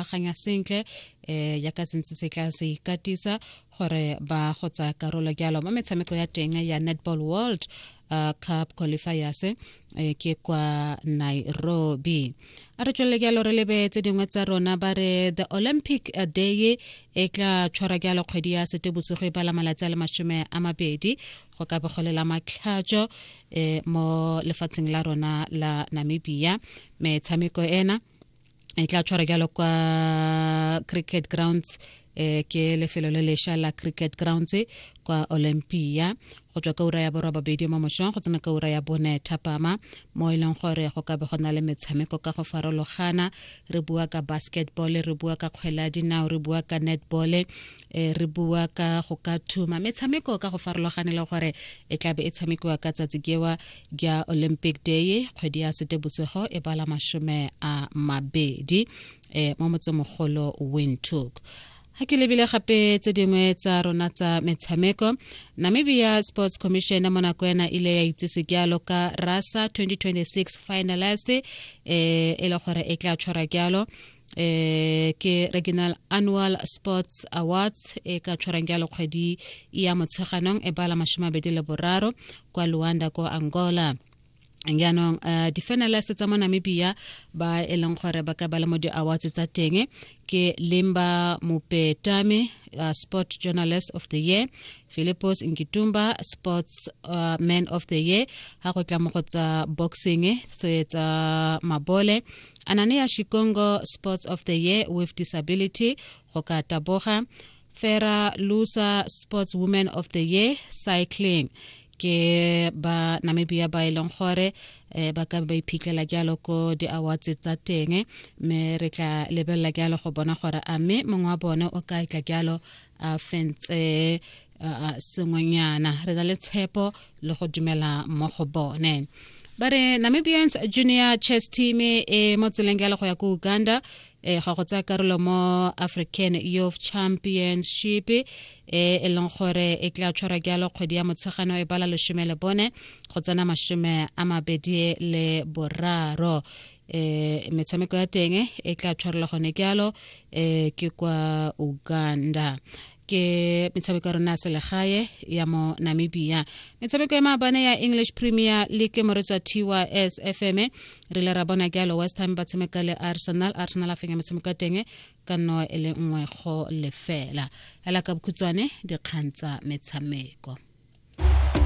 akanya sentle eh ya ka sentse se tla se ikatisa gore ba go tsaya karolo jalo mo metshameko ya teng ya netball world uh, cup qualifiers eh, ke kwa nairobi a re tswelele jalo re lebe tse dingwe tsa rona ba re the olympic eh, day e tla tshwara jalo kgwedi ya sete bosigo e bala malatsi a le masome a mabedi go ka bogolela matlhatso um mo lefatsheng la rona la namibia metshameko ena e tla tshwara jalo kwa cricket grounds eh ke lefelo le lesha la cricket grounds kwa olympia go tswa ka ura ya borwa babedi mo mošong go tsena ka ura ya bone thapama mo e leng gore go ka be go na le metshameko ka go farologana re bua ka basketball re bua ka kgwele ya dinao re bua ka netball e re bua ka go ka thuma metshameko ka go farologane le gore e tlabe e tshamekiwa ka tsatsi kewa ja olympic day kgwedi ya sete botsogo e bala mashome a mabedi e mo motsemogolo windhoek ga ke lebile gape tse dingwe tsa rona tsa metshameko namibia sports commission mo nako ena ile ya itsese jalo ka rasa 2026 finalist e e le gore e tla tshwara jalo eh ke regional annual sports awards e ka tshwarang jalo kgwedi ya motsheganong e bala mashome a bedi le boraro kwa luanda ko angola jaanong uh, di-finalist tsa mo namibia ba e leng gore ba ka ba le mo di-awards tsa teng ke limba mopetame uh, sport journalist of the year philippos nkitumba sports uh, man of the year ha go tla mo go tsa boxing se tsa mabole ananea shikongo sports of the year with disability go ka taboga fera lusa sports woman of the year cycling ke ba namibia ba e leng gore eh, ba ka ba iphitlhela jalo ko di-awards tsa teng mme re tla lebelela jalo go bona gore a mme mongwe wa bone o ka tla jalo a fentse sengwenyana re na le tshepo le go dumela mo go bone ba re namibians junior chess team e mo tseleng ya le go ya ko uganda e ga go tsaya karolo mo african youth championship e e leng gore e tla tshwara jalo kgwedi ya motshegano e bala lesome le bone go tsena masome a mabedi le boraro eh metshameko ya teng e tla tshwarela gone ke alo eh ke kwa Uganda ke metshameko ya rona selegae ya mo namibia metshameko ya maabane ya english premier league moretswa tys fm re le ra bona ke alo west ham ba tshameka le arsenal arsenal a fenya metshameko ya teng ka nno e le nngwe go lefela fela ka bokhutshwane dikgang tsa metshameko